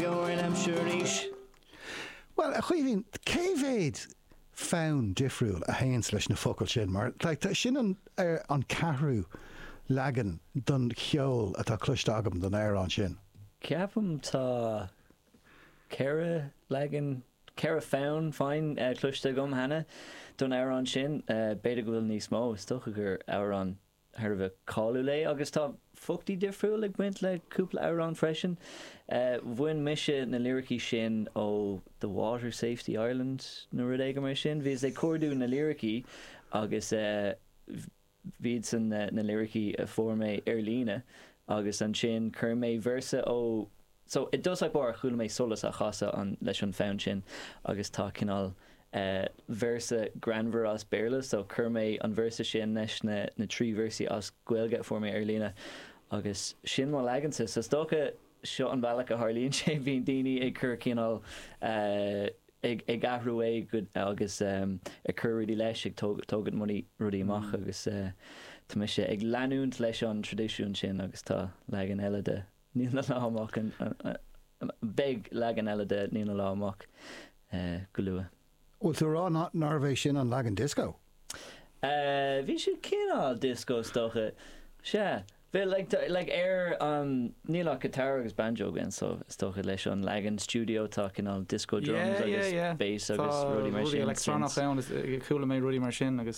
Bhuel, a Chaoimhín, cé mhéad fonn difriúil a théann leis na focail sin? Mar sin an ceathrú leagan den cheol atá cloiste agam don amhrán sin. Ceapaim tá ceithre leagan, ceithre fonn, féin, cloiste agam cheana don amhrán sin. B'fhéidir go bhfuil níos mó, is dócha gur amhrán thar a bheith cáiliúil é agus tá focla difriúil ag baint le cúpla amhrán freisin. Bhain mise na liricí sin ó The Water Safety Ireland nó rud éigin mar sin. Bhí mé ag cuardú na liricí agus b'iadsan na liricí a fuair mé ar líne agus ansin chuir mé véarsa ó So, i dtosach báire chuala mé Solas á chasadh leis an fonn sin agus tá cineál eh véarsa greannmhar as Béarla so chuir mé an véarsa sin leis na na trí véarsaí as Gaeilge a fuair mé ar líne agus sin mo leagansa so is dócha seo an bealach a tharlaíonn sé, bíonn daoine ag cur cineál eh ag ag athrú é agus em ag cur rudaí leis ag tóg tógaint roinnt rudaí amach agus eh tá mise ag leanúint leis an traidisiún sin agus tá leagan eile de Níl na Lá amach, beidh leagan eile de Níl na Lá amach go luath. Bhfuil tú a rá nárbh é sin an leagan dioscó? Bhí sé cineál dioscó is dócha. Sea. Bhí like ar an Níl ach guitar agus banjo againn so is dócha leis an leagan stiúideo tá cineál dioscó drums agus bass agus rudaí mar sin. Tá rudaí electronach ann is chuala mé rudaí mar sin agus.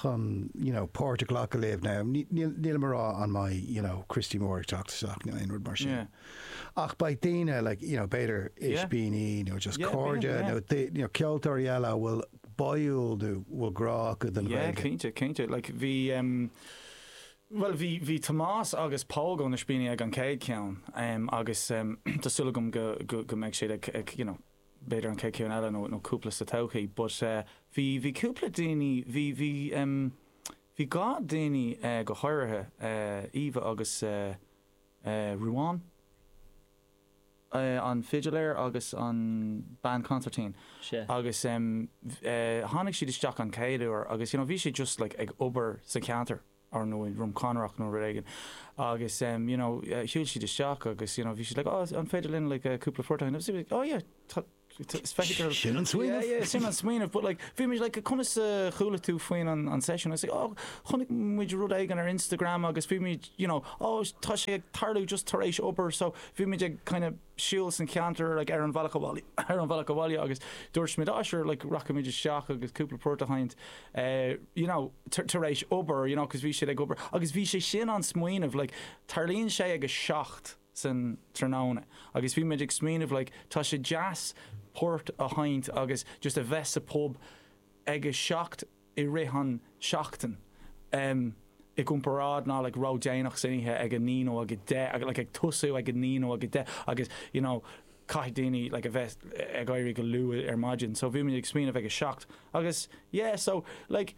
chun you know páirt a ghlacadh libh now níl nílim a rá an mbeidh you know Christy Moore ag teacht isteach nó aon rud mar sin yeah ach beidh daoine like you know b'fhéidir yeah Ispíní nó just yeah cairde yeah nó dé- you know ceoltóirí eile a bhfuil báúil nó bhfuil grá acu don yeah Ghaeilge cinnte cinnte like bhí um, Well bhí bhí Tomás agus Pól ó na hIspíní ag an chéad ceann um, agus um, tá súil agam go go go mbeidh siad ag, ag you know, b'fhéidir an chéad cheann eile nó nó cúpla sa todhchaí but eh bhí bhí cúpla duine bhí bhí em bhí dhá duine eh go háirithe eh Eva agus eh eh Ruán eh an fidiléir agus an bean consairtín agus em eh tháinig siad isteach an chéad uair agus you know bhí siad just like ag obair sa cheantar ar ndóigh, Drom Conrach nó rud éigin, agus you know shiúil siad isteach agus you know bhí siad like oh an féidir linn like cúpla port a sheinm? agus oh yeah tá it's spectacular Sin an smaoineamh! yeah yeah sin an smaoineamh but like bhí muid like conas a chuala tú faoin an an session? agus like oh chonaic muid rud éigin ar Instagram agus bhí muid you know oh tá sé ag tarlú just tar éis obair so bhí muid ag kind of siúl sa cheantar like ar an bhealach abhaile ar an bhealach abhaile agus dúirt muid ah sure like rachaimid isteach agus cúpla port a sheinnt eh you know tar éis obair you know 'cause bhí siad ag obair agus bhí sé sin an smaoineamh like tarlaíonn sé ag a seacht san tráthnóna agus bhí muid ag smaoineamh like tá sé deas port a sheinnt agus just a bheith sa bpub ag a seacht i rith an seachtain i gcomparáid ná like ró déanach san oíche ag a naoi nó ag a deich like ag tosú ag a naoi nó ag a deich agus you know caithfidh daoine like a bheith ag éirí go luath ar maidin so bhí muid ag smaoineamh ag a seacht agus yeah so like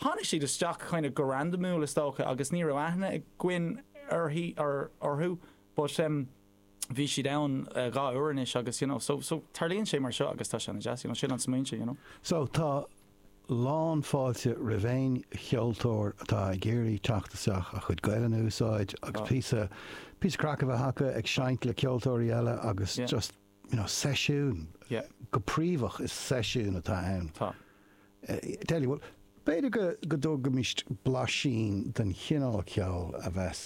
tháinig siad isteach kind of go randamúil is dócha agus ní raibh aithne againn uirthi or orthu but um bhí siad ann dhá uair anois agus you know so so tarlaíonn sé mar seo agus tá sé ana deas you know sin an smaoineamh you know. So tá lán fáilte roimh aon cheoltóir atá ag iarraidh teacht isteach a chuid Gaelainn a úsáid agus píosa píosa craic a bheith acu ag seinnt le ceoltóirí eile agus just you know seisiún yeah go príomha is seisiún atá ann tá deadly well b'fhéidir go go dtógfaimist blaisín den chineál ceol a bheas